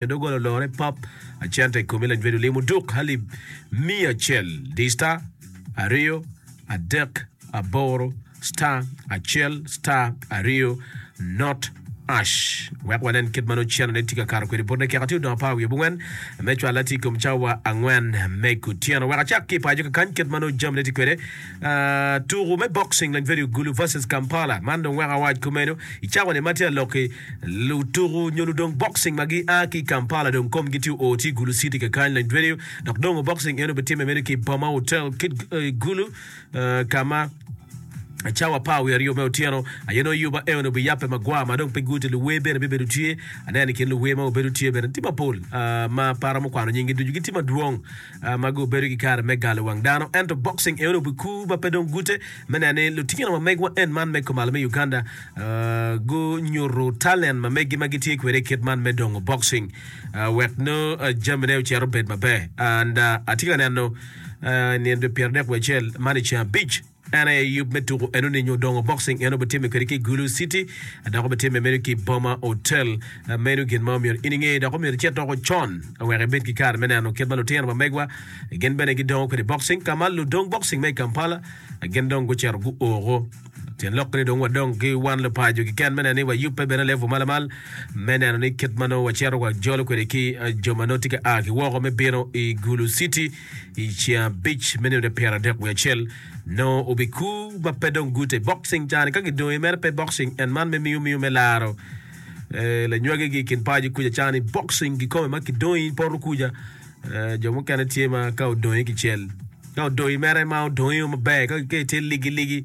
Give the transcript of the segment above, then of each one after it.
Nyo doggola olore pap acel tek kome lanywed olim oduk halib miya acel di star aryo adek aboro star acel star aryo not ash wek wanen kit ma nongo cennone tye ka kato kwede botne kek atir dong apar wiye bungwen me cwalla tye i kom cawa angwen me kutyeno wek acak ki i paco kakany kit ma nongo jamine tye kwede Tuku me boxing Lanvedi Ogulu vs Kampala man dong weko awac kumeno i cawani ma tye ka lok-ki. Lutuku nyo ludong boxing ma gia ki i Kampala dong komgi tye oo ki i Gulu City kakany. Lanvedi dok dongo boxing eno bitimme meno ki i Boma Hotel ki i Gulu ka ma cawa apar wiye aryo me otyeno aye nongo Yuba Eono biyabbe magwar ma dong pe guti. Luwer bene bibedo tye. Aneno i kin luwer ma gubedo tye bene tye mapol ah, ma para mukwano nyinggi ducu gitye madwong. ma gubedo ki kare me galo wang dano, ento boxing eno obedo kur ma pe dong gute me neno ni lutino ma megwa en man me kumalo me Uganda gunyuto talent ma megi ma gitye kwede i kit man me dongo boxing wek nongo jamine ocito bed maber and atye ka neno nino dwe pyerarek wiye acel man i ceng abic. En aye yub me tuko eno ni nyo dongo boxing eno bitime kwede ki Gulu City dok obitime meno ki Boma Hotel. Meno gin ma omyero in inge dok omyero icit doko con wek ibed ki kare me neno kit ma lutino ma megwa gin bene gidongo kwede boxing ka ma ludong boxing me i Kampala gin dong gucito guoko. Tyen lok ni dong wadong ki wan lupaco kiken me neno ni wayubbe bene level ma lamal me neno ni kit ma nongo wacito wajolo kwede ki jo ma nongo tye ka a ki woko me bino i Gulu City I ceng abic me nino nyo pyeradek wiye acel, nongo obikur ma pe dong gute i boxing cani ka gidongo i mere pe boxing en man me miyo miyo me laro eh, lanywagi gi i kin paco kuca cani boxing gikome ma kidongo i poto kuca eh, jo mukene tye ma ka odongo i kicel ka odongo i mere ma odongo iyo maber ka ka itye ligi ligi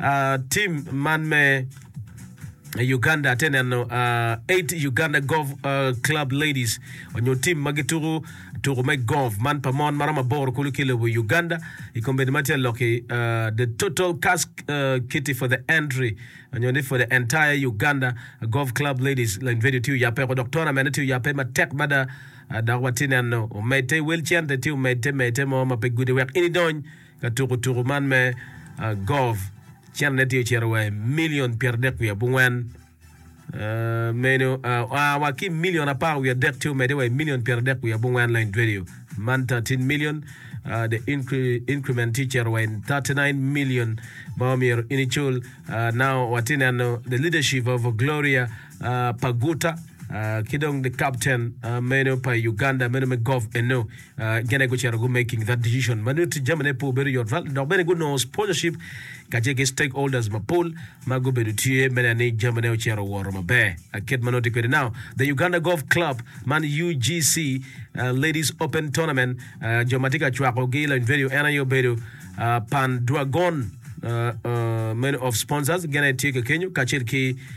Uh, team man me Uganda te neno uh, eight Uganda Golf uh, Club Ladies onyo team ma gituku tuku me golf man pa mon maromo aboro kulu ki lobo Uganda i kombedi ma tye loki uh, the total cask uh, kiti for the entry onyo ni for the entire Uganda Golf Club Ladies la video tye oyape ko dok tournament tye oyape matek mada uh, dok watye neno omedte wel cente tye omedte medte mo ma pe gudi wek ini dony ka tuko tuku man me golf, cente ne tye ocito wa i milion pyeradek wiye abongwen. Meno oa wa ki i milion apar wiye adek ci omedde wa i milion pyeradek wiye abongwen lain dwedyo. Man 13 million, uh, the incre increment tye ocito wa in 39 million ma omyero in icul. Uh, now watye neno the leadership of Gloria uh, Paguta uh, ki dong the captain uh, meno pa Uganda meno me golf eno. Gene gucito gu making that decision ma nongo jamine pe obedo yot val dok bene gunongo sponsorship kacel ki stakeholders mapol ma gubedo tye me neno ni jamine ocito woro maber. Kit ma nongo tye kwede now, the Uganda Golf Club man UGC Ladies Open Tournament, jo ma tye ka cwako gi loyo venue en aye obedo Pan Dragon many of sponsors gene tye kekenyo kacel ki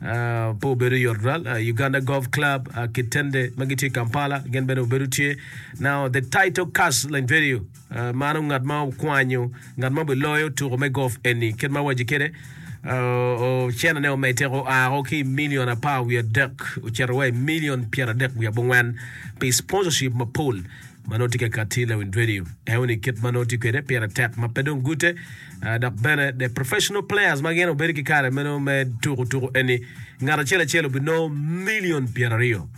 Pe obedo yot ral. Uganda Golf Club, Kitende ma gitye i Kampala gin bene obedo tye. Now the title cast in video mano ngat ma okwanyo ngat ma obiloyo tuko me golf eni kit ma waci kede ocena ne omed teko oako ki i milion apar wiye adek ocito wa i milion pyeradek wiye abongwen pi sponsorship mapol ma nongo tye ka katti i lawic radio eo ni kit ma nongo tye kwede pire tek ma pe dong gute ah, dok bene the professional players ma gin obedo ki kare me nongo me tuko tuko eni ngat acel acel obinongo million pyeraryo